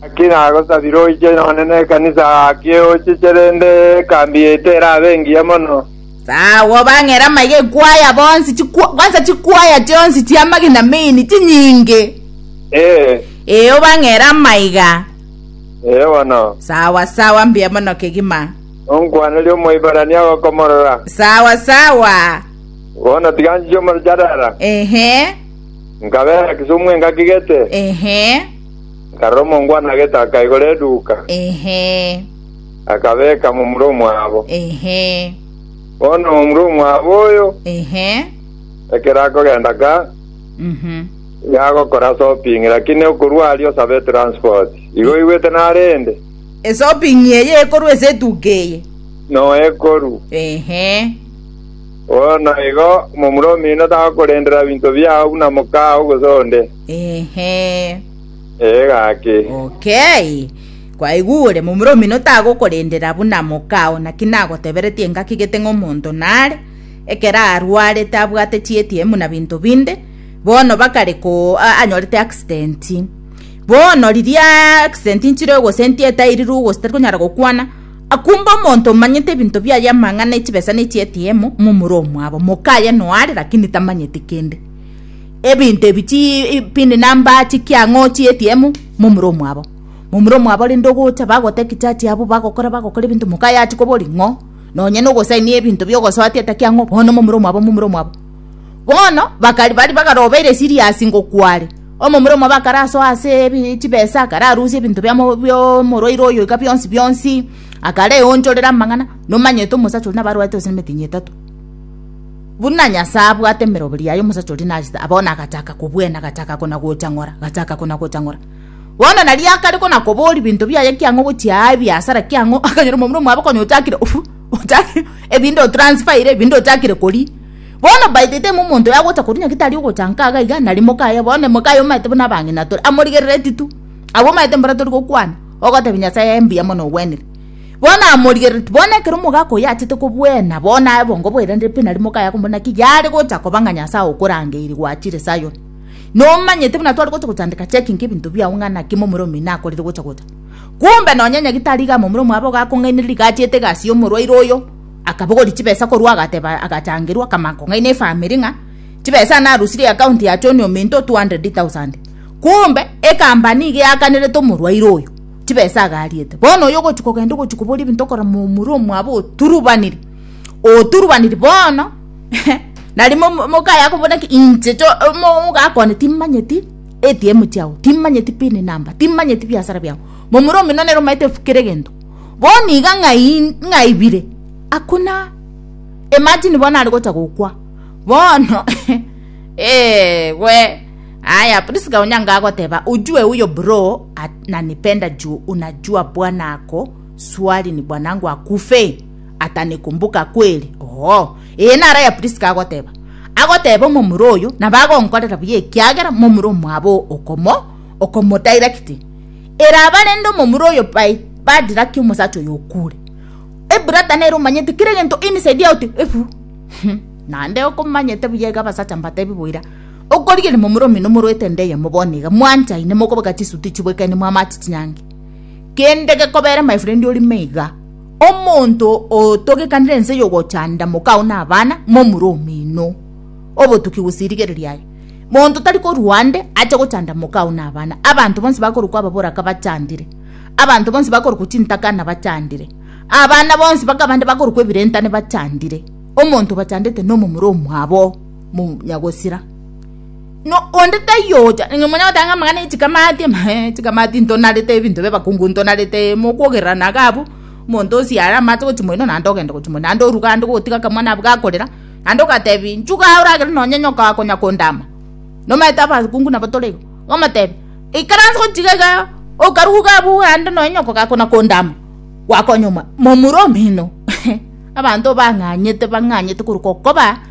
Naki nagosabire oiche nonye nekanisa gaki eochiche, rende ekambi yaito erabe engiya mono. Tagwo bang'ere amaiga ekwo aya bonsi, chikwa, kwansa chikwa aya chionsi chi'amagena main, chinyinge. Ee, Ee, obang'ere amaiga. ee bono. Sawa, sawa, mbuya mono kegima. Nonkwanerie Omoiberania ogokomorora. Sawa, sawa. Bono tiga nchiche omorero Chadara, Ehe, nkabeera Kisumu engaki gete. ehe. Nkarora omongwana agete akaigora eduuka, Ehe, akabeeka momura omwabo. ehe, Bono omura omwabo oyo, ehe. ekero akogenda ka, Mhm. iga agokora shopping, lakini okorwa aria osabe transport. Igo oigwete narende? Eshopping eye ekorwa ase eduka eye. Noekoru. Ehe. Bono igo momura omino tagokorendera ebinto biao buna mokao gose onde. Ehe. Ee, gaki. Okay. Kwaigure, momura omino tagokorendera buna mokao, naki nagoteberetie engaki gete ng'a omonto nare, ekero arwarete abwate chietiye muna binto binde, bono bakare ko anyorete accident. Bono riria accident nchire ogosentia etairirwe gose tari konyara gokwana, akumbe omonto omanyete ebinto biaye amang'ana echibesa ne chietiye mo, momura omwabo. Mokaye noare lakini tamanyeti kende. ebinto ebi chii pindi number chikiang'oo chi ATM momura omwabo momura omwabo rende ogocha bagotaki charge yabo bagokora bagokora ebinto mokaye achi kobori ng'o nonye na ogosaini ebinto bia ogosoa ati etaki ang'o bono momura omwabo momura omwabo bono bakari baria bakarobeire serious ngokware omomura omwabo akarasoa ase ebi chibesa akararusia ebinto bia mo bia omorwaire oyo iga bionsi bionsi akareonchorera amang'ana nomanyete omosacha oria nabo arwarete gose na emitinyi etato. Buna Nyasae abwate emeroberi yaye omosacha oria nachete abao na agachaka kobwena agachaka kona-gocha ng'ora, agachaka kona-gocha ng'ora. Bono nario akare kona-koboria ebinto biaye ekiang'o gochia aa ebiasara ekiang'o akanyora omomura omwabo konya ochakire ochakire ebinto otransfaire ebinto ochakire koria. Bono by the time omonto oyo agocha koria nyagete aria ogocha nka iga iga naria moka oye bono moka oye omanyete buna abang'ina tore amorigerereti tu. Abwo omanyete mbora tori gokwana ogotebia Nyasaye ee mbuya mono ogwenire. Bono amorigerereti, bono ekero omogaka oyio achete kobwena, bono aye bongo bwerendire pi na rimo kaya komorera, naki yare gocha koba ng'a Nyasae okorangeiri gwachire Sayoni. Nomanyete buna tware gocha gochandeka checking ebinto biao ng'a naki momura omino akorire gocha gocha. Kumbe nonya nyagitari iga momura omwabo iga akong'ainereria iga achiete egasi y'omorwaire oyo, akabogoria chibesa korwa agateba agachangerwa, akamanya kong'aina efamiri ng'a chibesa yane arusirie account ya Choni ominto 200,000. Kumbe, ekambani iga eakanerete omorwaire oyo. Tibesagariete. Bono oyo ogochia kogenda ogochia koboria ebinto okora momura omwabo oturubanire, oturubanire bono nari mokaye akobora ng'a inche omogaka one timanyeti ATM chiago, timanyeti pin number, timanyeti biasara biago, momura omino nere omanyete kera egento, bono iga ng'ai ng'aibire hakuna imagine bono aregocha gokwa bono wee. Aya Prisca onyanga agoteba ujue uyo bro ananipenda juu unajua bwana ako swali ni bwanangu akufe atanikumbuka kweli oo ee nara ya Prisca agoteba agoteba omomura oyo na bagonkorera buya ekiagera momura omwabo okomo okomodirect eraba rende omomura oyo by badirect omosacha oyo okure ebrata nero omanyete kire gento inside out efu nande okomanyete buya ega basacha mbatebi boira Okorigereria momura omino morwete ende eyemo bono iga, mwanchaine, mokobaga chisuti chiboikaine, mwamache chinyangi. Kende gekobere my friend orime iga, omonto otogekanire ense yogochanda mokao na abana, momura omino. Obotuki gose erigereria aye. Monto tari korwa ande ache gochanda mokao na abana. Abanto bonsi bakorokwa ababoraka bachandire. Abanto bonsi bakorokwa chintakana bachandire. Abana bonsi bakabande bakorokwa ebirentane bachandire. Omonto obachandete nomomura omwabo. monyagosira no onde taiyo ocha nonye monya gotanga amagana echikamati chikamati ntonarete ebinto bia abakungu ntonarete mokogererana iga abwo omonto osie are amache gochia moino naende ogende gochia moino naende oruga ande gotiga akamwana abwo gakorera naende ogatebi nchuga oragere nonye nyoka akonya kondama nomaete abakungu nabo tore iga ogomotebi ikaranse gochia iga iga okaruga iga abwo ande nonye nyoka gakona kondama gwakonya omwa momura omino abanto bang'anyete bang'anyete korwa gokoba.